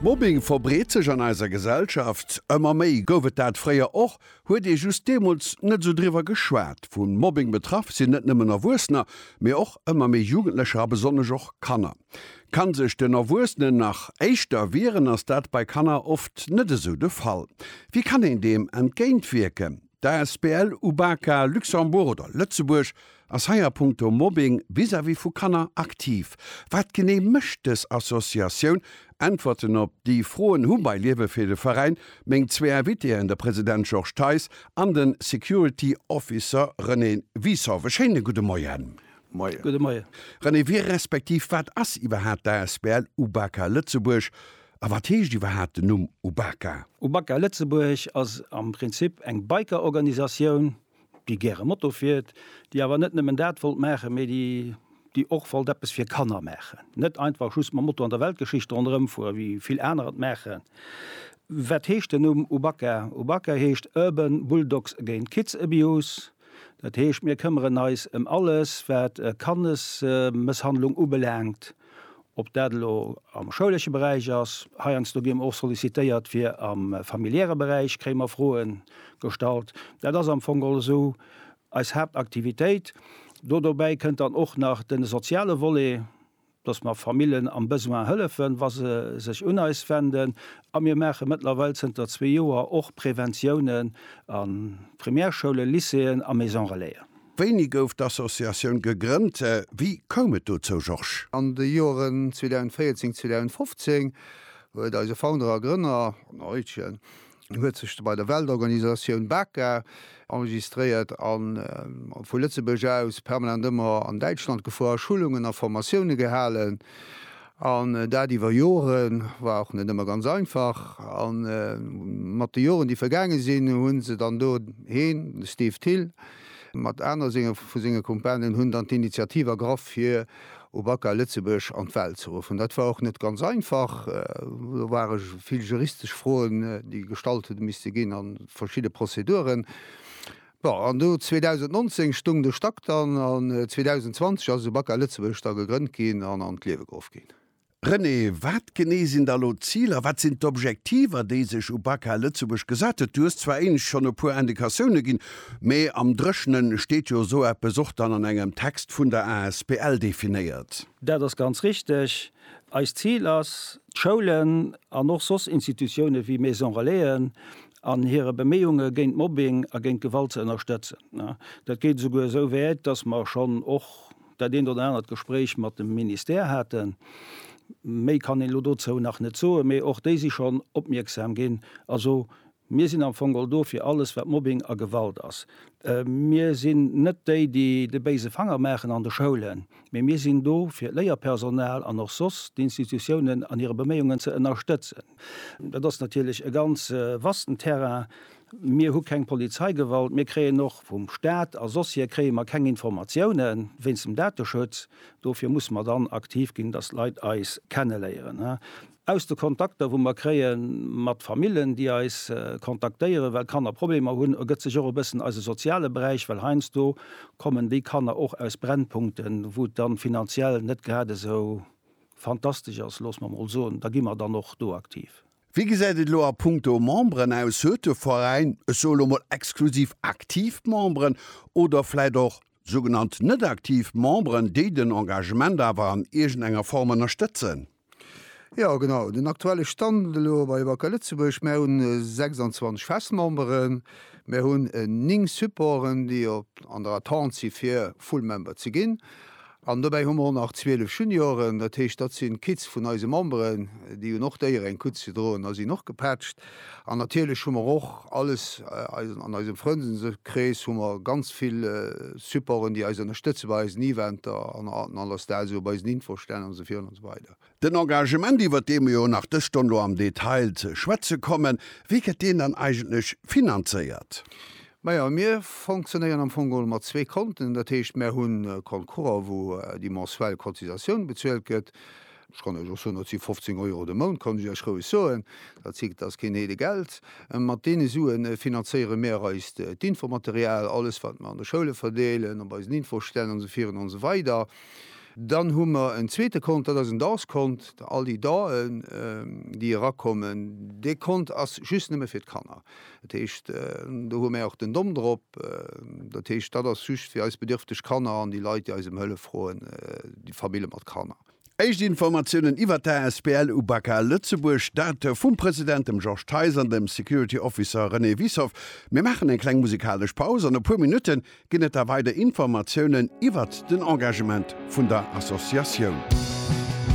Mobbing verbreet sech an eiser Gesellschaft ëmmer méi. Gouf et dat fréier och? Huet ee just deemools net esou driwwer geschwat? Vu Mobbing betraff sinn net nëmmen Erwuessener, mee och ëmmer méi Jugendlecher a besonnesch och Kanner. Kann sech den Erwuessenen nach éischter wieren, ass dat bei Kanner oft net esou de Fall. Wéi kann een deem entgéintwierken? D'Asbl Ubaka Luxembourg oder Lëtzebuerg ass hei a punkto Mobbing vis-à-vis vu Kanner aktiv. Wat genee mécht dës Associatioun? Äntwerten op déi Froen hu bei Liewe fir de Veräin meng zwee Invitéen, de President Georges Theis an de Security Officer René Wisow. E schéine gudde Moien. Moien. René, wie respektiv wat ass iwwerhaapt d'Asbl Ubaka Lëtzebuerg A wat heescht iwwerhaapt den Numm Ubaka? Ubaka Lëtzebuerg ass am Prinzip eng Biker-Organisatioun, déi gäre Moto fiert, déi awer net nëmmen dat wollt maachen, mee déi och wollt eppes fir Kanner maachen. Net einfach just mam Moto an der Weltgeschicht ronderëm fueren, wéi vill aner et maachen. Wat heescht den Numm Ubaka? Ubaka heescht Urban Bulldogs Against Kids Abuse. Dat heescht, mir këmmeren eis ëm alles, wat Kannesmësshandlung ubelaangt. Ob dat elo am schoulesche Beräich ass, heiansdo gi mer och sollicitéiert fir am familiäre Beräich kréie mer Froe gestallt. Dat ass am Fong also eis Haaptaktivitéit. Do dobäi kënnt dann och nach de soziale Volet, dass mer Famillen am Besoin hëllefen, wa se sech un eis wenden. A mir maache mëttlerweil zënter zwee Joer och Preventiounen a Primärschoule, Lycéeën a Maison-relaisen. Wéini gouf d'Associatioun gegrënnt? Wéi koum et dozou, Georges? An de Joeren 2014, 2015 huet eise Founder a Grënner, den Eutjen, huet sech bei der Weltorganisatioun BACA enregistréiert a vu Lëtzebuerg aus permanent ëmmer an Däitschland gefuer, Schulungen a Formatioune gehalen. An dat iwwer Joren, war och net ëmmer ganz einfach. A mat de Joren, déi vergaange sinn, hu se dann do, heen, de Steve Thill mat aner senge vu senge Kumpanen, hunn dann d'Initiativ ergraff, fir Ubaka Lëtzebuerg an d'Welt ze ruffen. Dat war och net ganz einfach. Do ware vill juristesch Froen, déi gestallt hu misste ginn, a verschidde Prozeduren. Bon, an do 2019 stung de Stack dann, an 2020 ass esou Bacca Lëtzebuerg da gegrënnt ginn an an d'Liewe geruff ginn. René, wat genee sinn da elo d'Ziler, wat sinn d'Objektiver, déi sech Ubaka Lëtzebuerg gesat huet? Du hues zwar éinescht schonn e puer Indikatioune ginn, mee am Dréchne steet jo esou eppes och dann an engem Text vun der asbl definéiert. Dat ass ganz richteg. Eist Zil ass, d'Schoulen an och soss Institutioune wéi Maison-relaisen an hire Beméiunge géint Mobbing a géint Gewalt ze ënnerstëtzen. Dat geet esouguer esou wäit, dass mer schonn och dat eent oder anert Gespréich mat dem Ministère haten. Méi kann een elo dozou nach net soen, mee och déi si schonn opmierksam ginn. Also mir sinn am Fong all do fir alles, wat Mobbing a Gewalt ass. Mir sinn net déi, déi de béise Fanger maachen an de Schoulen. Mee mir sinn do, fir d'Léierpersonal an och soss d'Institutiounen an hire Beméiungen ze ënnerstëtzen. Dat ass natierlech e ganz vasten Terrain. Mir hu keng Polizeigewalt. Mir kréien och vum Staat a soss hier kréie mer keng Informatiounen wéinst dem Dateschutz. Dofir musse mer dann aktiv ginn, datt d'Leit eis kenneléieren. Aus de Kontakter wou mer kréie mat Famillen déi eis kontaktéieren, well d'Kanner Problemer hunn, ergëtt sech och e bëssen eise soziale Beräich, well heiansdo kommen déi Kanner och aus Brennpunkten, wou et dann finanziell net grad esou fantastesch ass, loosse mer mol soen. Da gi mer dann och do aktiv. Wéi gesäit et elo a punkto Memberen aus? Huet de Veräin, ech soe elo mol exklusiv aktiv Memberen oder vläit och sougenannt net aktiv Memberen, déi den Engagement awer an iergendenger Form ënnerstëtzen? Jo genau, den aktuelle Stand elo bei Wacker Lëtzebuerg, mär hunn 26 Festmemberen, mär hunn 9 Supporten, déi op an der Attente si fir Full Member ze ginn. An dobäi hu mer och nach 12 Junioren, dat heescht dat si Kids vun eise Memberen, déi hunn och d'Éier eng Kutt ze droen a sinn och gepatcht. An natierlech hu mer och alles, an eisem Frëndeskrees hu mer ganz vill Supporten, déi eis ënnerstëtze bei eisen Eventer an an aller Star, esou bei eisen Infostänn an esou virun an esou weider. Den Engagement, iwwert dee mer jo nach dës Stonn do am Detail ze schwätze kommen, wéi gëtt deen dann eigentlech finanzéiert? Majo, mir fonctionnéieren am Fong geholl mat zwee Konten. Dat heescht, mer hunn Compte courant, wou déi mensuel Cotisatioun bezuelt gëtt, Ech kann Iech och soen, dat si 15 Euro de Mount, kann ech Iech roueg soen. Dat si, dat ass keen Heede Geld. Mat deene Sue finanzéiere mär eist d'Infomaterial, alles wat mer an de Schoule verdeelen, op eisen Infostänn an esou virun an esou weider. Dann hu mer en zweete Kont, dat ass en Danskont, all déi Danen, déi erakommen, dee Kont ass just nëmme fir d'Kanner. Dat heescht, do hu mär och den Dom drop. Dat heescht, dat ass just fir eis bedierfteg Kanner an déi Leit, déi eis ëm Hëllef froen, déi Famille mat Kanner. Éischt Informatiounen iwwert d'ASBL Ubaka Lëtzebuerg, dat vum President, dem Georges Theis, an dem Security Officer René Wiessow. Mir maachen eng kleng musikalesch Paus. An e puer Minutte ginn et da weider Informatiounen iwwert den Engagement vun der Associatioun.